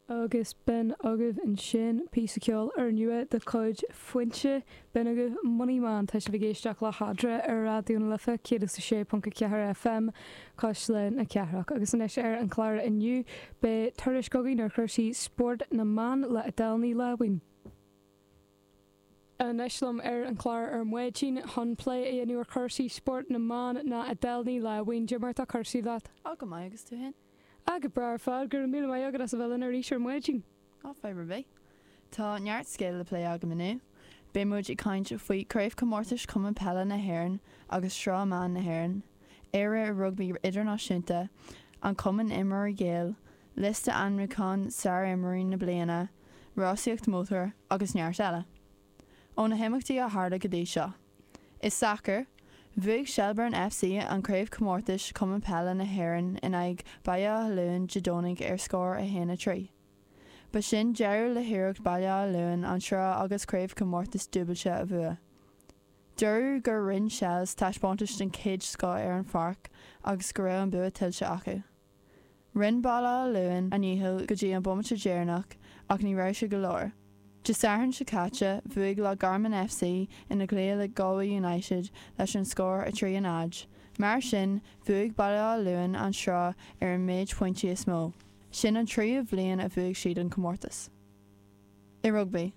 Agus b'in agaibh ansin, píosa ceoil úrnua de chuid Foinse, b'in agaibh Money Man, tá sibh ag éisteacht le hEadra ar Raidió na Life 106.4 FM, Cuisle na Cathrach. Agus anois ar an chlár inniu, beidh tuairisc againn ar chúrsaí spóirt na mban le Adele Ní Láimhín. anois liom ar an chlár ar maidin chun plé a dhéanamh ar chúrsaí spóirt na mban ná Adele Ní Láimhín, cad é mar atá cúrsaí leat? Tá go maith, agus tú fhéin? Ah, go breá ar fad, go raibh míle maith agat as a bheith linn arís ar maidin. Ah, fadhb ar bith. Tá neart scéal le plé agam inniu. Beidh muid ag caint faoi Craobhchomórtais Chumann Peile na hÉireann agus Sraith na mBan na hÉireann, Éire i Rugbaí Idirnáisiúnta, an Cumann Imreoirí Gael, liosta ainmniúcháin Sárimreoirí na Bliana, rásaíocht mótair agus neart eile. Ó na himeachtaí a tharla go dtí seo. I sacar, bhuaigh Shelbourne FC an Craobhchomórtais Chumann Peile na hÉireann in aghaidh Baile Átha Luain Dé Domhnaigh ar scór 1, 3. Ba sin deireadh le hiarracht Bhaile Átha Luain an sraith agus Craobhchomórtais dúbailte a bhua. Dúradh gur rinn Shels taispeántais den chéad scoth ar an pháirc agus go raibh an bua tuillte acu. Rinn Baile Átha Luain a ndícheall go dtí an bomaite deireanach ach ní raibh sé go leor. Dé Sathairn seo caite, bhuaigh Loch Garman FC ina gcluiche le Galway United leis an scór 3, 0. Mar sin, bhuaigh Baile Átha Luain an Sraith ar an méid pointí is mó. Sin an tríú bhliain a bhuaigh siad an comórtas. I rugbaí,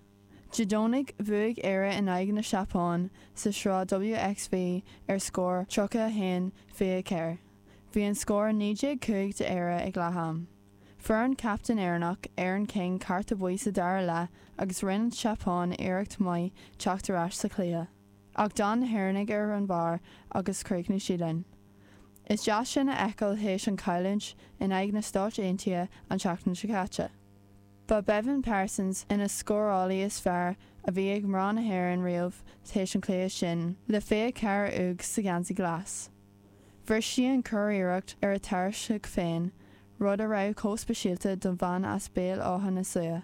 Dé Domhnaigh bhuaigh Éire in aghaidh na Seapáin sa sraith WXV ar scór 31, 24. Bhí an scór 19, 5 d'Éire ag leath-am. Fuair an captaen Éireannach, Erin King cárta buí sa dara leath agus rinne an tSeapáin iarracht maith teacht ar ais sa chluiche. Ach d'fhan na hÉireannaigh ar an bharr agus chríochnaigh siad linn. Is deas sin a fheiceáil théis an chailliúint in aghaidh na Stáit Aontaithe an tseachtain seo caite. Ba Béibhinn Parsons ina scórálaí is fearr a bhí ag mná na hÉireann riamh tar éis an cluiche sin le 24 úd sa gheansaí glas. Bhris sí an churiarracht ar a tairseach féin, rud a raibh chomh speisialta don bhean as Béal Átha na Sluaighe.